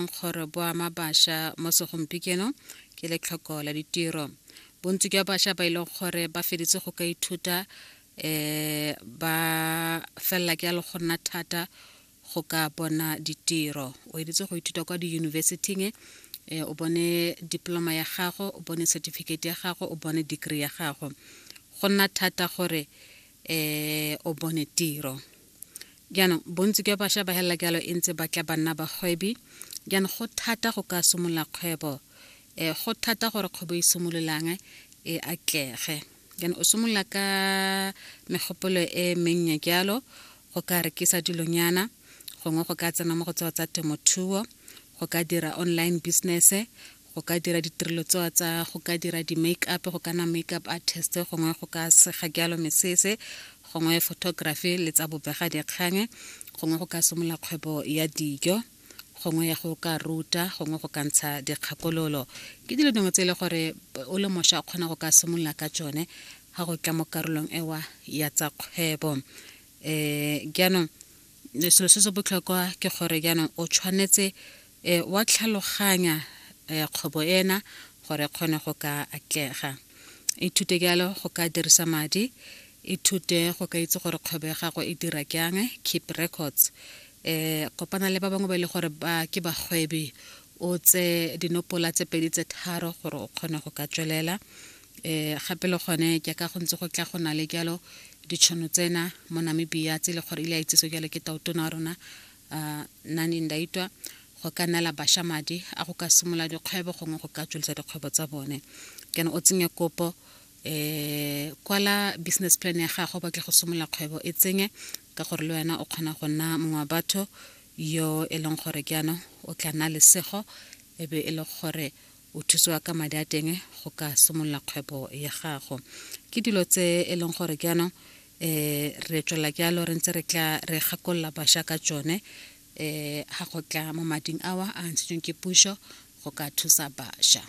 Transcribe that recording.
nkgoro bo ama bašwa mo segompikeno ke letlhoko la ditiro bontsi jwa bašwa ba e leng gore ba feditse go ka ithuta um ba felela ke ya le go nna thata go ka bona ditiro o editse go ithuta kwa diyunibesithing um o bone diploma ya gago o bone certificate ya gago o bone degree ya gago go nna thata gore um o bone tiro Jaanong, bontsi jwa basha ba helela jalo e ntse ba tla ba nna bagwebi. Jaanong, go thata go ka simolola kgwebo. E, go thata gore kgwebo e simololang e atlege. Jaanong, o simolola ka megopolo e mennye jalo, go ka rekisa dilonyana, gongwe go ka tsena mo go tseo tsa temothuo, go ka dira online business, go ka dira ditirelo tsewa tsa go ka dira di-make up go kana make up artist gongwe go ka sega jalo mesese gongwe photography le tsa bobega dikgang gongwe go ka simolola kgwebo ya dijo gongwe ya go ka ruta gongwe go ka ntsha dikgakololo ke dilo dingwe tse e le gore o le mosha o kgona go ka simolola ka tsone ga go tla mo karolong ewa ya tsa kgwebo um jaanong selo se se botlhokwa ke gore jaanong o tshwanetse E, wa tlhaloganya e, kgwebo ena gore e kgone go ka atlega. Ithute jalo go ka dirisa madi, ithute go ka itse gore kgwebo ya gago e dira jang, keep records. E, kopana le ba bangwe ba e le gore ba ke bagwebi o tse dinopola tse pedi tse tharo gore o kgone go ka tswelela um gape le gone jaaka go ntse go tla go na le jalo ditšhono tsena mo namibia tse e le gore ile a itsese jalo ke taotona wa rona Uh, nani ndaitwa go ka neela basha madi a go ka simolola dikgwebo gongwe go ka tswelisa dikgwebo tsa bone kana o tsenye kopo um kwala business plan ya gago batle go simolola kgwebo e tsenye ka gore le wena o kgona go nna mongwe wa batho yo e leng gore jaanong o tla nna lesego e be e le gore o thusiwa ka madi a teng go ka simolola kgwebo ya gago ke dilo tse e leng gore ke yanong um re tswelela ke yalo re ntse re tla re gakolola bašwa ka tsone um ga go tla mo mading awa a ntshitsweng ke puso go ka thusa bašwa